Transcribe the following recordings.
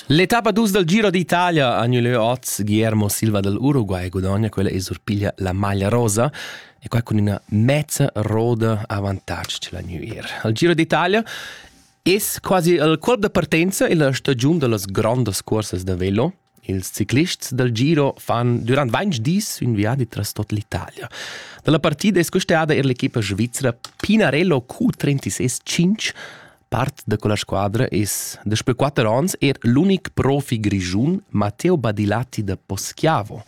L'etappa dus dal Giro d'Italia ha gnü lö oz. Guillermo Silva dal Uruguay gudogna quella e surpiglia la maglia rosa e quai cun üna mezza roda avantatg c'la gnü ir. Al Giro d'Italia es quasi il colp da partenza illa stagiun da las grondas cuorsas da velo. Ils ciclists dal Giro fan durant ventg dis ün viadi tras tot l'Italia. Dalla partida es custada eir l'equipa svizra Pinarello Q36 Part da quella squadra es daspö quatter ans er l'unic profi grischun Matteo Badilatti da Poschiavo.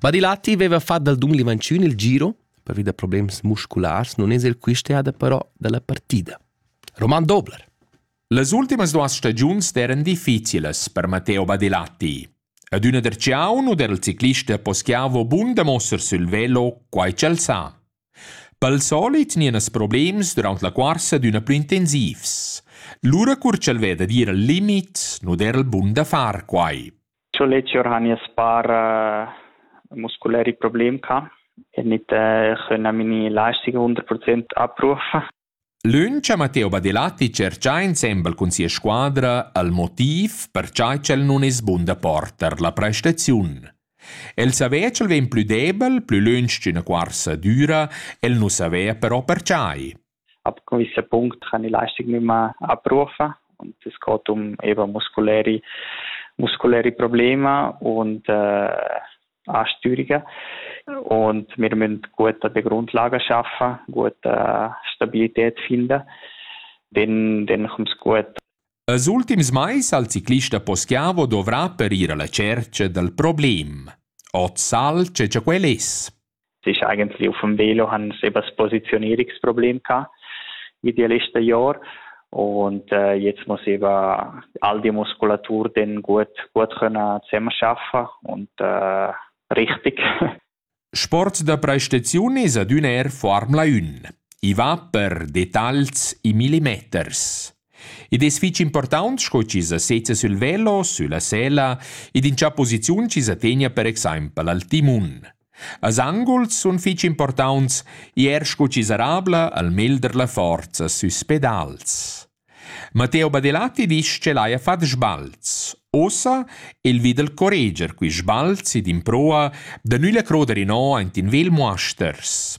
Badilatti veva fat dal Dunli Vanciun il giro, pervi da problems musculars, non es el quist'eada però dalla partida. Roman Dobler. Las ultimas duas stagiuns eran difficilas per Matteo Badilatti. Ad üna der ciaun u der il ciclista poschiavo bun da mosser sül velo, quai ch'el sa. Pel solit gnienas problems durant la cuorsa d'üna plü intensivs. Lura cur ch'el veda d'ir al limit, nu der il bun da far quai. Cho Lezio hani as par uh, musculäri problem ca e nit uh, chönna mini lastica 100% abruf. Lönch ha Matteo Badelatti tscherchà insembel cun sia squadra el motiv per cha ch'el nun es bun da porter la prestaziun. El savea ch'el vegn plü debel, plü lönch ch'üna cuorsa düra, el nu savea però perchai. Ab gewisser Punkt han die Leistung nicht mehr abrufen und es geht um eben muskuläre muskuläre Probleme und äh, Astürica und wir müssen gute Grundlagen schaffen, gute Stabilität finden. Dann, dann kommt es gut. Als ultims mais al ciclista Poschiavo dovrà per ir alla cerca dal problem. Ot sal ce quel es. sich eigentlich auf dem Velo haben sie eben das Positionierungsproblem gehabt in den letzten Jahren. Und äh, jetzt muss eben all die Muskulatur dann gut, gut können zusammenarbeiten und äh, richtig. Sport da prestazione ad un air Formula 1. I va per detalls i millimeters. Id es fich important sco chi sa sezza sul velo, sulla sela ed in cha posiziun chi sa tegna per exaimpel al timun. Als anguls sun fich importants ir scu chi sarabla al melder la forza süs pedals. Matteo Badilatti disch ch'el haja fat sbalz. Ussa el vi dal correger quist sbalzi d'improa da nülla croder inò aint in vel muasters.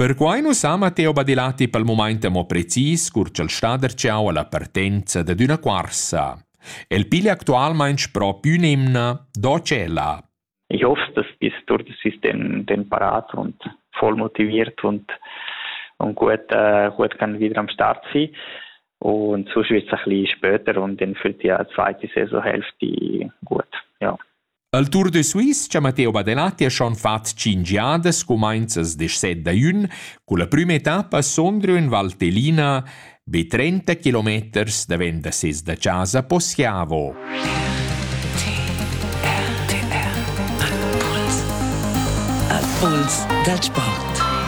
Perquai nu s'ha Matteo Badilatti pel mumaint amo precis cur ch'el sta darcheu alla partenza dad üna cuorsa. El piglia actualmaing proprio ün'emna do tschella. Ich hoffe, dass bis durch das System den parat und voll motiviert und, und gut, äh, gut kann wieder am Start sein. Und sonst wird es ein bisschen später und dann fällt ja die zweite Saisonhälfte gut. Ja. El Tour de Suisse cha Matteo Badelatti ha schon fat tschinch jadas cumainzas desset da jün, culla prüma etappa sondrio in Valtellina be 30 kilometers davent da ses da chasa Poschiavo. RTR Impuls dal sport